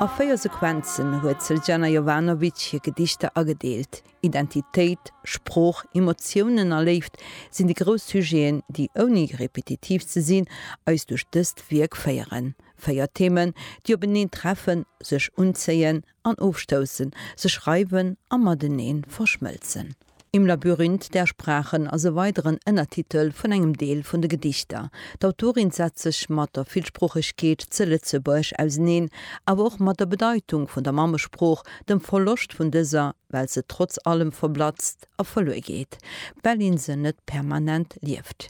A véier Sequenzen huet d'Sljana Jovanovic hir Gedichter agedeelt. Identitéit, Sprooch, Emotiounen a Léift sinn déi grouss Sujeten, déi, ouni repetitiv ze sinn, eis duerch dëst Wierk féieren. Véier Themen, déi openeen treffen, sech unzéien an ofstoussen, sech reiwen a mateneen verschmëlzen. Im Labyrinth der Sprachen ass e weideren Ënnertitel vun engem Deel vun de Gedichter. D'Autorin setzt sech mat der Villsproochegkeet ze Lëtzebuerg auseneen, awer och mat der Bedeitung vun der Mammesprooch, dem Verloscht vun dëser, well se trotz allem verblatzt a verluer geet, well een se net permanent lieft.